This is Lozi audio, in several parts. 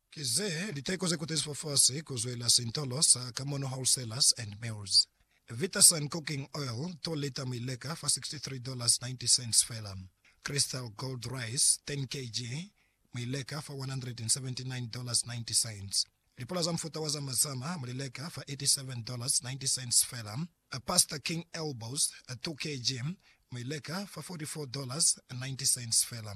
Ki ze liteko ze kutezi fafasi ku zwela sintolo sa Kamono Wholesalers and Mills. Vitasun Cooking Oil, 2 lita mi leka fa $63.90 fela. Crystal Gold Rice, 10 kg, mi leka fa $179.90. Lipula za mufuta wa zama zama mu li leka fa $87.90 fela. Pasta King Elbows, 2 kg, mi leka fa $44.90 fela.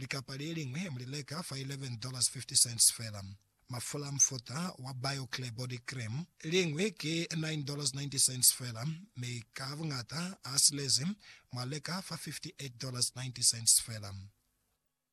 Likapa le liñwi mu li leka fa $11.50 fela. Mafula a mufuta wa BioClear Body Cream, liñwi ki $9.90 fela, mi ka buñata a silezi mwa leka fa $58.90 fela.